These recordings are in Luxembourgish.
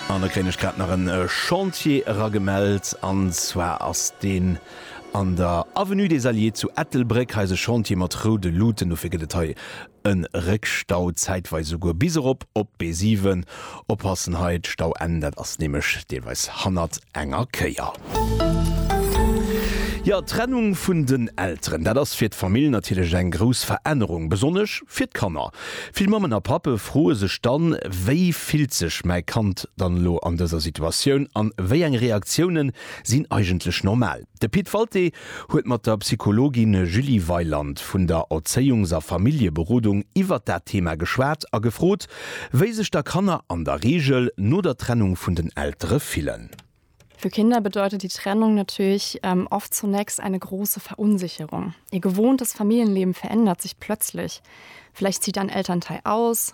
An da kréien ech grad nach en Chantier eragemellt, an zwar ass deen an der Avenue des Alliés zu Ettelbréck. Hei ass e Chantier mat roude Luuten, dofir gëtt et hei e Réckstau, zäitweis esouguer bis erop op d'B7. Oppassen hei, d'Stauenn, dat ass nämlech deelweis hannert enger Kéier. Jo, d'Trennung vun den Elteren, dat ass fir d'Famill natierlech eng grouss Verännerung, besonnesch fir d'Kanner. Vill Mammen a Pappe froe sech dann, Wéi fillt sech mäi Kand dann elo an dëser Situatioun an wéi eng Reaktiounen sinn eigentlech normal? De Pit Walté huet mat der Psychologin Julie Weyland vun der Erzéiungs a Familljeberodung iwwert dat Thema geschwat a gefrot, wéi sech da Kanner an der Reegel no der Trennung vun den Eltere fillen. Für Kinder bedeutet die Trennung natürlich oft zunächst eine große Verunsicherung. Ihr gewohntes Familienleben verändert sich plötzlich. Vielleicht zieht ein Elternteil aus,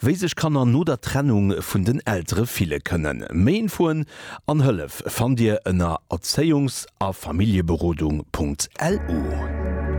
Wéi sech Kanner no der Trennung vun den Eltere fille kënnen. Méi Infoen an Hëllef fannt Dir ënner erzéiungs a familljeberodung.lu.